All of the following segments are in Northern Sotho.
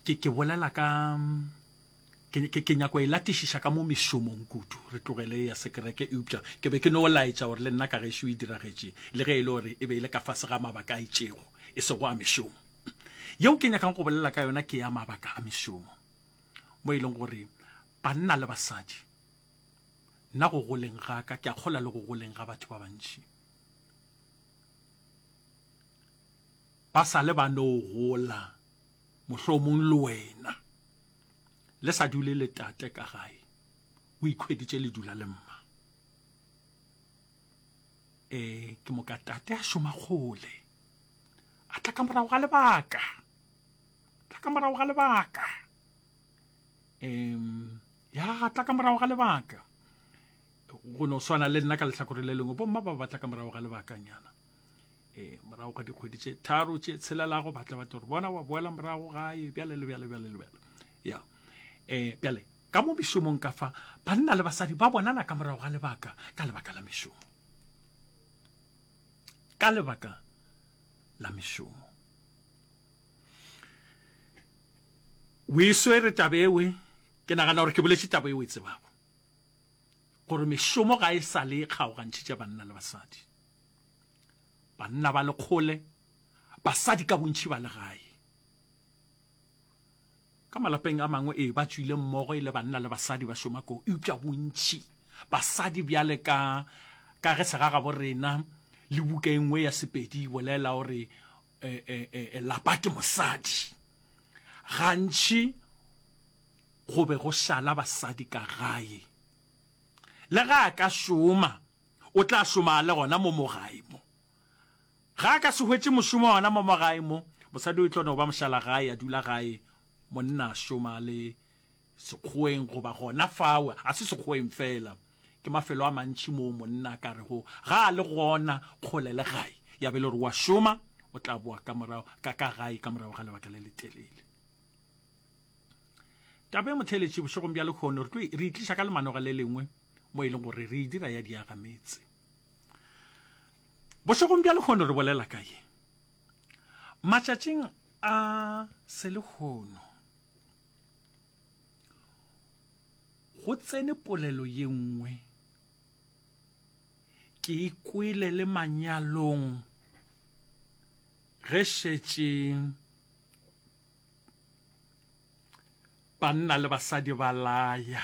ke ke bolela ka ke ke ke nyako e latišiša ka mo mešomong kudu re tlogele ya sekereke eupša ke be ke no laetša gore le nna ka gešo e diragetše le ge e le gore e be e le ka fase ga mabaka a itšego e sego a mešomo yeo ke nyakang go bolela ka yona ke ya mabaka a mešomo mo e leng gore banna le basadi nna go goleng ga ka ke a kgola le go goleng ga batho ba bantši ba sa le ba no gola mohlomong le wena le sa dule le tate ka gae o ikhweditše le dula le mma e ke moka tate a šoma kgole a tla ka morago ga lebaka tla ka morago ga lebaka um ya tla ka morago ga lebaka go no swana le nna ka lehlakore le lengwe bomma ba batla ka morago ga lebakanyana ee morago ga dikgwedi tše tharo tše tshelelago ba tla batla gore bona wa boela morago gae bjale le bjale bjale le bjale ya um bjale ka mo mešomong ka fa banna le basadi ba bonana ka morago ga lebaka ka lebaka la mešomo ka lebaka la mešomo o e swere taba ewe ke nagana gore ke boletse taba eo e tsebago gore mešomo ga e sa le kgaogantšhitša banna le basadi banna ba lekgole basadi ka bontšhi ba legae ka malapeng a mangwe ee ba tswile mmogo e le banna le basadi ba šoma koo eupša bontšhi basadi bjale ka ka ge segagabo rena le buka e nngwe ya sepedi e bolela gore e, e, e, e lapa ke mosadi gantši go be go šala basadi ka gae le ga a ka šoma O tla šoma le gona mo mo gae mo. Ga a ka se hwetše mošomo gona mo mo gae mo, mosadi o e tlo no ba mošalagae, a dula gae, monna a šoma le sekgoeng goba gona fao. A se sekgoeng fela, ke mafelo a mantši moo monna a ka rego ga a le gona kgole le gae, ya be le gore o a šoma, o tla boa ka morago ka ka gae ka morago ga lebaka le letelele. Taba e motheeletši bošegong bja lekgono re tlo re itliša ka lemanog le lengwe. mo e leng gore re e dira ya diaga metse bošegong bja lekgono re bolela ka ye matšatšing a selekgono go tsene polelo ye nngwe ke e kwele le manyalong ge šetše banna le basadi ba laya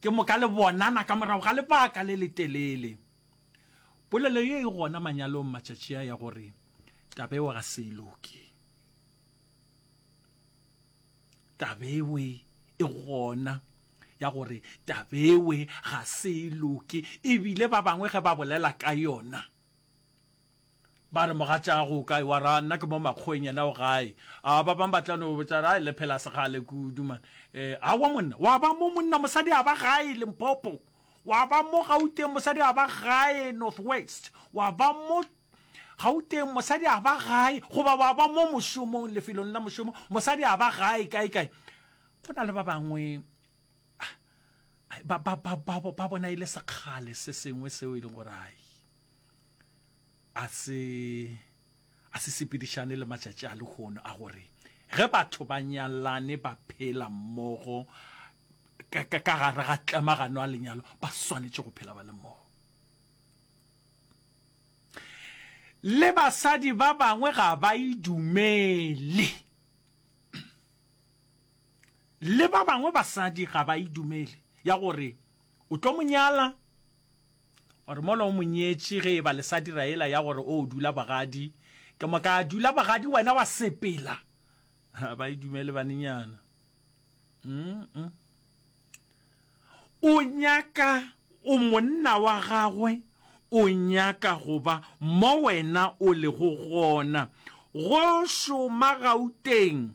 Ke moka le bonana ka morago ga lebaka le letelele. Polelo ye e gona manyalong matšatši a ya gore Tabewe ga se e loke. Tabewe e gona ya gore Tabewe ga se e loke ebile ba bangwe ge ba bolela ka yona, Ba re, Mogatšaago o kae? Wa ra, Nna ke mo makgoweng, yena o gae. A Ba bangwe ba tla no botša, Ai, le phela sekgale kudu, man. E, aowa, monna. Wa ba mo, monna, mosadi a ba gae Limpopo. Wa ba mo, Gauteng, mosadi a ba gae North West. Wa ba mo, Gauteng, mosadi a ba gae, goba wa ba mo mošomong, lefelong la mošomo, mosadi a ba gae kae-kae. Go na le ba bangwe ba, ba, ba, ba, ba bona e le sekgale se sengwe seo e leng gore, ai. a se a se sepedišane le matšatši a lehono a gore ge batho ba nyalane ba phela mmogo ka gare ga tlemagano a lenyalo ba swanetše go phela ba le mmogo le basadi ba bangwe ga ba idumele le ba bangwe basadi ga ba idumele ya gore o tlo monyala Gore mola o mo nyetše ge e ba le sa dira yela ya gore o dula bogadi. Ke mo ka dula bogadi wena wa sepela. Ha ba e dumele banenyana. Mm-mm. O nyaka o monna wa gagwe o nyaka go ba mo wena o lego gona. Go šoma Gauteng.